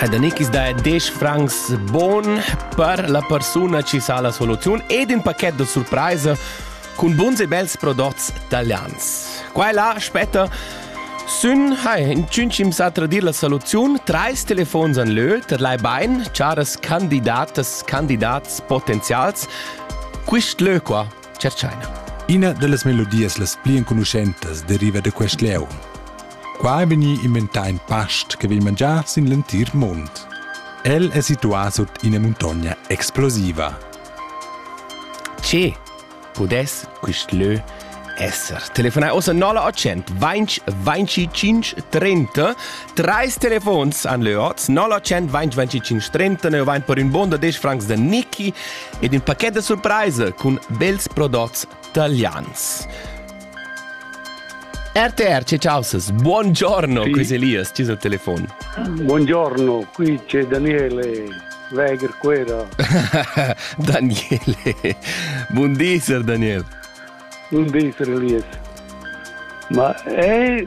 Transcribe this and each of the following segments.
Ha da nichis da 10 francs bon per la persuna chi sa la soluziun ed in pacchet da surpraisa cun buns e bels prodots italians. Qua e là spetta Sün hai in tschüncim sa tradir la soluziun, treis telefons an lö, ter lai bain, charas candidatas, candidats potenzials. Quist lö qua Tschertschaina. Ina dallas melodias las pli enconuschentas deriva da quest lieu. Qua è vegnì inventà in past che vegn mangià sin l'entir mund. El è situà sut ina muntogna explosiva. Tge pudess quest lö esser? Telefonai ossa 0800 20 25 30 Treis telefons an lö oz 0800 20 25 30 Ne vain per ün bon da 10 francs da Niki ed ün paquet da surpraisa cun bels prodots talians. RTR, c'è ciausas, buongiorno, sì. qui Elias, ci sul telefono. Buongiorno, qui c'è Daniele Weger Quera. Daniele, buondisser Daniele. Buondisser Elias. Ma è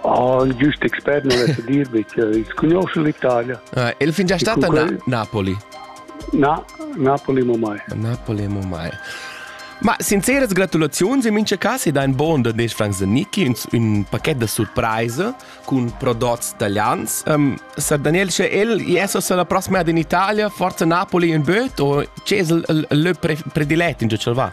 Oh, il giust expert non vesse dirvi che il conosce l'Italia. Uh, il fin già stata quel... Napoli? Na, Napoli mo mai. Napoli mo mai. Ma sinceras gratulaziuns in mincha cas ed ein bon da nes Frank Zanicki un, un paket da surprise cun prodotti italians. Um, Sir Daniel, sche el Jesus la prossima ad in Italia, forza Napoli in böt o c'è il le predilet in giocel va?